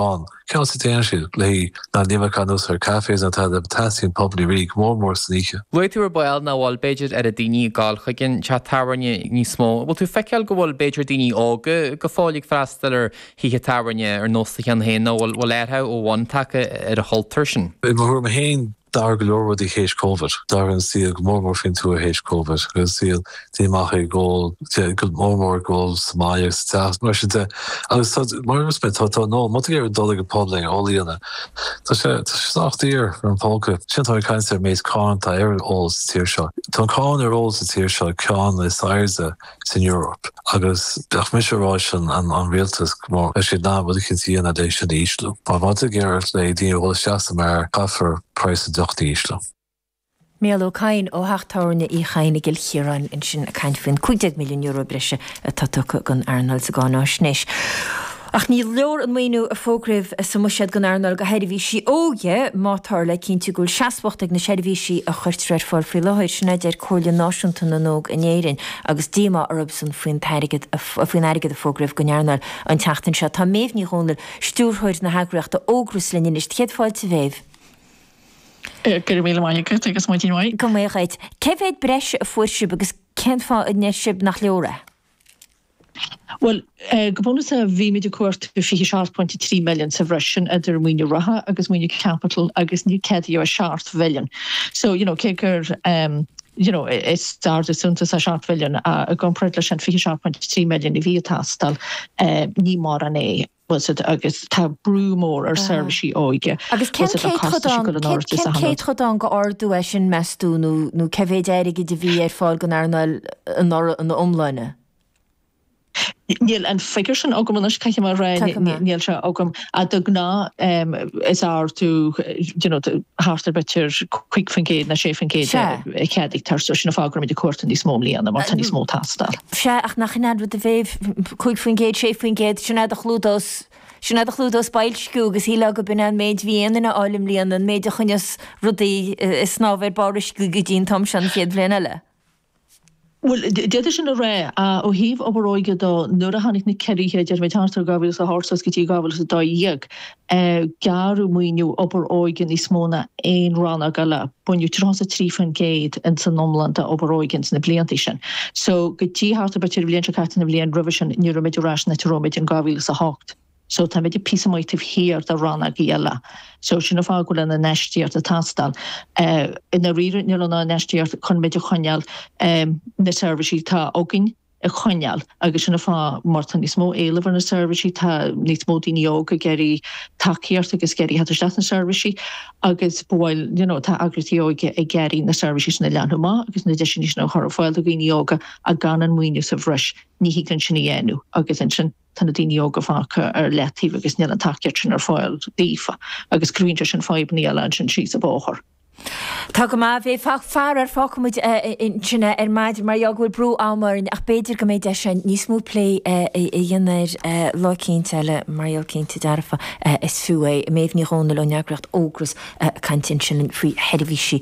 ann. Cén chaoi a dtéann siad léi ná ní bheidh aon úsáid ar cafes ná tada teastaíonn pub i dtír, go mór mór san oíche. Luaigh tú ar ball nach bhfuil, b'fhéidir, oiread daoine ag gabháil chuig an teach tábhairne níos mó. An bhfuil tú ag feiceáil go bhfuil, b'fhéidir, daoine óga go fóill ag freastal ar thithe tábhairne ar nós do cheann féin nó an bhfuil athrú ó bhonn tagtha ar an chultúr sin? I mo thuairim féin, D'athraigh go leor rudaí théis Covid. D'athraigh an saol go mór mór faoin tuath théis Covid. Bhí an saol ag imeacht ag ól, go mór mór ag ól sa mbaile agus sa teach, mar sin de. Agus tá, mar a dúirt mé, tá an ól, má tá tú ag iarraidh dul ag an pub le ól a dhéanamh, tá sé, tá sé sách daor ar an póca. Sin tá caint ar an méid cáin atá ar an ól sa tír seo. Tá cáin ar ól sa tír seo ceann is airde. san Eoraip. Agus bheadh mise ag rá leis an rialtas go mba cheart dóibh rud eicínt a dhéanamh le sin a ísliú. Má tá tú ag iarraidh ar dhaoine a dhul isteach sa mbeár, caithfear praghas an deoch a ísliú. Niall Ó Cadhain ó theach tábhairne Uí Chadhain i gCill Chiaráin ansin ag caint faoin €15 milliún breise atá tugtha don earnáil sa gcáináisnéis. Ach ní leor an maoiniú a fógraíodh sa mbuiséad don earnáil do sheirbhísí óige má táthar le cinntiú go bhfuil seasmhacht ag na seirbhísí a chuirtear ar fáil faoi láthair, sin a deir Comhairle Náisiúnta na nÓg in Éirinn agus díomá orthusan faoin airgead a fógraíodh don earnáil an tseachtain seo. Tá Méabh Ní Dhomhnaill, stiúrthóir na heagraíochta Ógras, linn anois. Céad fáilte, a Mhéabh. Go raibh míle maith agat agus maidin mhaith. Maidin mhaith dhuit. Cé mhéad breise a fuair sibh agus cén fáth a ndeir sibh nach leor é? Bhuel, go bunúsach bhí muid ag cuartú €27.3 milliún sa bhreis sin idir maoiniú reatha agus maoiniú caipitil agus níor ceadaíodh ach €7 milliún. So, you know, cé gur, you know, is ardú suntasach €7 milliún i gcomparáid leis an €27.3 milliún a bhí ag teastáil, ní mórán é. agus tá brú mór ar sheirbhísí óige. Agus cén céatadán d'ardú é sin, meas tú, nó cé mhéid airgid a bhí ar fáil don earnáil anuraidh ina iomláine? Níl an figiúr sin agam anois, caithfidh mé a rá, níl sé agam. De ghnáth is ardú thart ar b'fhéidir 5% nó 6% a cheadaítear, so sin an fáth go raibh muid ag cuartú níos mó i mbliana mar tá níos mó ag teastáil. Sea, ach nach in é an rud, a Mhéabh, cúig faoin gcéad, sé faoin gcéad, sin fad a chlúdós, sin fad a chlúdós boilsciú agus shílfeá gurb in é an méid a bhí aon duine a fháil i mbliana, an méid a choinneos rudaí ag snámh ar bharr uisce go dtí an t-am seo an chéad bhliain eile. Bhuel, d'fhéadfaí sin a rá, ach ó thaobh obair óige dó, nuair a tháinig na ciorruithe, déarfaidh muid, thart ar 2008 suas go dtí 2012, gearradh maoiniú obair óige níos mó ná aon rannóg eile. Baineadh 33% ins an iomlán de obair óige ins na blianta sin so go dtí thart ar b'fhéidir an bhliain seo caite an bhliain roimhe sin ní raibh muid ar ais san áit a raibh muid in 2008. So tá muid píosa maith taobh thiar de rannóga eile. So sin an fáth go bhfuil an infheistíocht ag teastáil. I ndáiríre níl an infheistíocht chun muid a choinneáil ag na seirbhísí atá againn. a choinneáil agus sin an fáth mar tá níos mó éileamh ar na seirbhísí, tá níos mó daoine óga ag iarraidh tacaíocht agus ag iarraidh theacht isteach sna seirbhísí agus go bhfuil, you know, tá eagraíochtaí óige ag iarraidh na seirbhísí sin a leathnú amach agus na deiseanna sin a chur ar fáil do dhaoine óga ach gan an maoiniú sa bhreis ní thig linn sin a dhéanamh agus ansin tá na daoine óga fágtha ar leataobh agus níl an tacaíocht sin ar fáil daofa agus cruthaíonn sé sin fadhbanna eile ansin síos an bóthar. Tá go maith, bhuel faraor fágfaidh muid ansin é ar maidin mar gheall go bhfuil brú am orainn ach b'fhéidir go mbeidh deis again níos mó plé a dhéanamh air lá eicínt eile mar gheall cinnte dearfa is fiú é. Méabh Ní Dhomhnaill ón eagraíocht Ógras ag caint ansin linn faoi sheirbhísí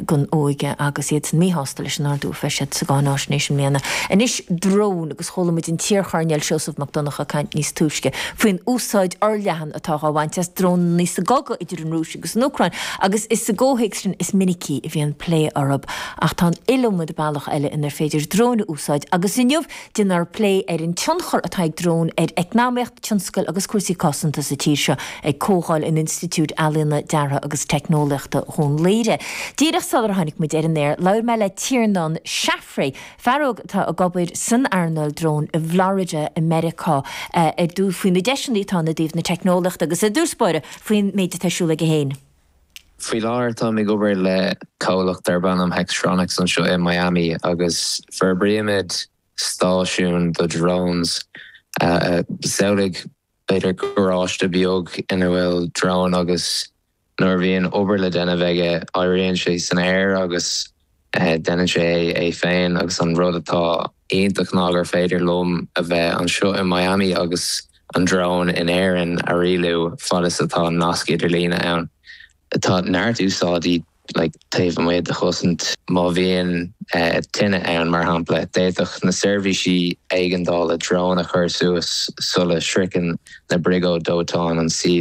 don óige agus iad sách míshásta leis an ardú a fuair siad sa gcáináisnéis i mbliana. Anois drón agus chuala muid an t-iarchoirnéal Seosamh Mac Donncha ag caint níos túisce faoin úsáid fhorleathan atá dhá bhaint as dróin sa gcogadh idir an Rúis agus an Úcráin, agus is sa gcomhthéacs sin is minicí a bhíonn plé orthu. Ach tá an iliomad bealach eile inar féidir dróin a úsáid, agus inniu déanfar plé ar an tionchar atá ag dróin ar eacnamaíocht, tionscail agus cúrsaí cosanta sa tír seo ag comhdháil in Institiúid Ealaíona, Deartha agus Teicneolaíochta Dhún Laoghaire. Díreach sular tháinig muid ar an aer, labhair mé le Tiarnán Caffrey, fear óg atá ag obair san earnáil drón i bhFlorida i Meiriceá ar dtús faoi na deiseanna atá ann i dtaobh na teicneolaíochta agus i dtús báire faoin méid atá ar siúl aige féin. Faoi láthair táim ag obair le comhlacht darb ainm Hextronics anseo i Miami agus forbraímid stáisiún do drones samhlaigh b'fhéidir, garáiste beag ina bhfuil drón agus nuair a bhíonn obair le déanamh aige, éiríonn sé san aer agus déanann sé é féin. Agus an rud atá iontach ná gur féidir liom a bheith anseo i Miami agus an drón in Éirinn a rialú fad is atá nasc idirlíne ann. Tá neart úsáidí taobh amuigh de chosaint. Má bhíonn tine ann, mar shampla, d'fhéadfadh na seirbhísí éigeandála drón a chur suas sula sroicheann na briogáid dóiteáin an suíomh.